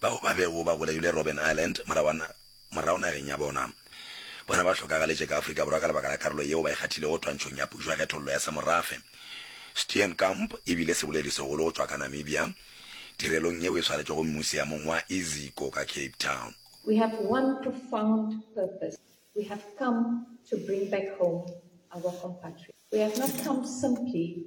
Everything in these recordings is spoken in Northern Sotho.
bao ba bego ba bolailwe Robben Island, morago nageng ya bona. Bona ba hlokagaletše ka Afrika Borwa ka lebaka la karolo yeo ba e kgathilego twantšhong ya pušo ya kgethollo ya semorafe. Steenkamp e bile seboledi segolo go tšwa ka Namibia tirelong yeo e swaretšwego mmuseamong wa Iziko ka Cape Town. We have one profound purpose, we have come to bring back home our compatriots. We have not come simply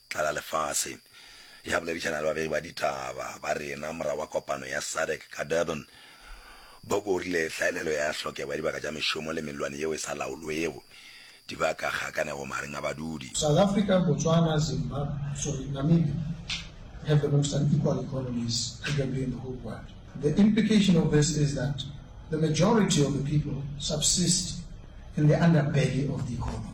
tlala lefase. Ge a boledišana le babegi ba ditaba ba rena morago ga kopano ya SADC ka Durban, Boko o rile hlaelelo ya hlokego ya dibaka tša mešomo le mellwane yeo e sa laolwego di baka kgakanego magareng a badudi. South Africa, Botswana, Zimbabwe, sorry, Namibia have the most unequal economies arguably in the whole world. The implication of this is that the majority of the people subsist in the underbelly of the economy.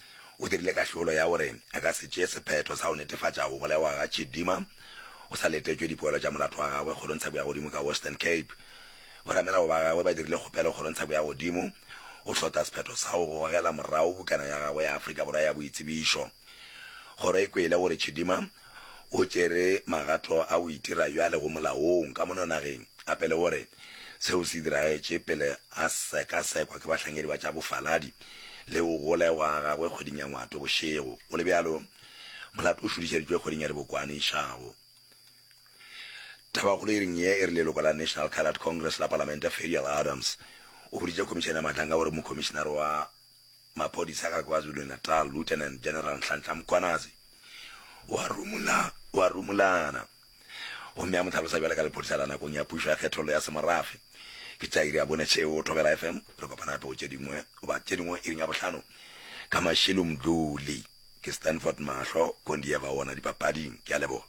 o dirile kahlolo ya gore a ka se tšee sephetho sa go netefatša go bolawa ga Chidima go sa letetšwe dipoelo tša molato wa gagwe Kgorong Tsheko ya Godimo ka Western Cape. Boramelago ba gagwe ba dirile kgopelo Kgorong Tsheko ya Godimo go hlotla sephetho sa go gogela morago bukana ya gagwe ya Afrika Borwa ya boitsebišo. Kgoro e kwele gore Chidima o tšere magato a go itira bjale go molaong ka mono nageng gape le gore seo se diragetše pele a sekasekwa ke bahlankedi ba tša bofaladi le go gola gwa gagwe kgweding ya Ngwatwe bošego. Go le bjalo, molato o šudišeditšwe kgweding ya Dibokwane išago. Tabakgolo iring ye e re leloko la National Cadet Congress la Palamente Ferial Adams o boditše khomišene ya matanga gore mokhomišenare wa maphodisa ka KwaZulu-Natal Lieutenant General Nhlanhla Mkhwanazi o a rumulana gomme a mo hlalosa bjale ka lephodisa la nakong ya pušo ya kgethollo ya semorafe. Ke tša iri ya bone tšeo, Thobela FM. Re kopana gape go tše dingwe, goba tše dingwe iring ya bohlano ka mašilo Mdluli. Ke Stanford Mahlo, Kondieva wona dipapading. Ke a leboga.